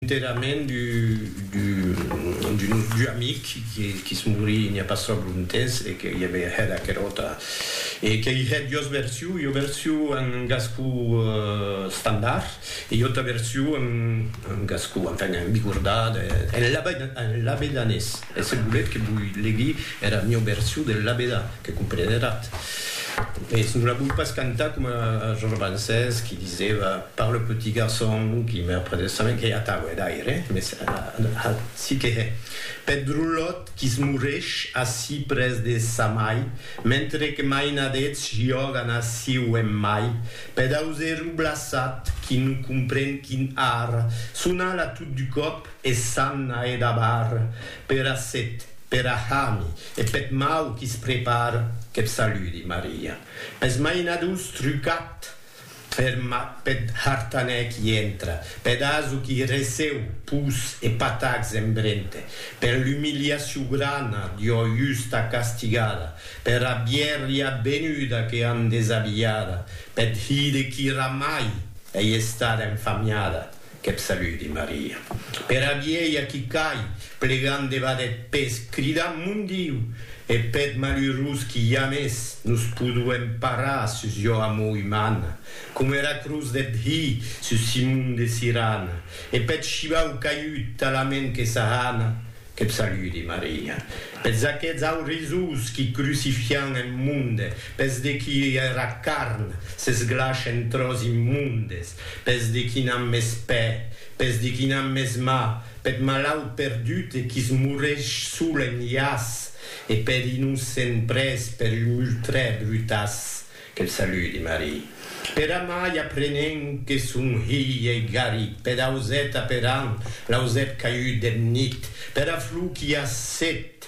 Enterrament d'un nostre amic que's morí n'i a pas tròp longtemps e que i a veir hèr aquera auta e que i hèr duas versions, ua version en gascon estandard e ua auta version en gascon, enfin, en bigordat, en labedanés. E se voletz que voi legui era mieu version del labedà, que compreneratz, mès non la voi pas cantar coma Georges Brancès qui disèva par le petit garçon qui me prenait sa main, qu'ei atau, hè, d'aire, mès aci que hè, peth drolot qui's moresh ací pres de sa mai, mentre que mainadets jògan ací o en mai, peth auserro blaçat qui non compren quin art, son ala tot du còp, E s'an a edabar pera set, pera hami e peth mau qui's prepar, qu'eth saludi, Maria. Pes mainadors trucat er mat peth hartanèr qui entra, peth aso qui receu pus e patacs en brente, per l'umiliacion grana d'ua justa castigada, pera bièrria benuda que an desabilhada, peth hide qui ramai ei estada enfamiada, Qu'eb saludi Maria. Pera vielha qui cai, plegant debat eth pes, cridant Mon Diu! E peth malurós qui jamès nos poduem parar sus jo amor umana, coma era cruz deth Hi sus Simon de Sirana, e peth shivau caiut talament que s'ahana, qu'eb saludi Maria. Pes aqueths aurisós qui crucifian en monde, pes de qui era carn s'esglash en tròç immondes, Pes de qui n'an mès pè, pes de qui n'an mès mà, peth malaut perdut e qui's moresh sol en iàs, e peth innocent près per un ultrè brutàs, que'l saludi, Marie. Per amai aprenent que son hilh ei garit peth auset aperant, l'ausèt caiut deth nit, pera flor qu'i a set,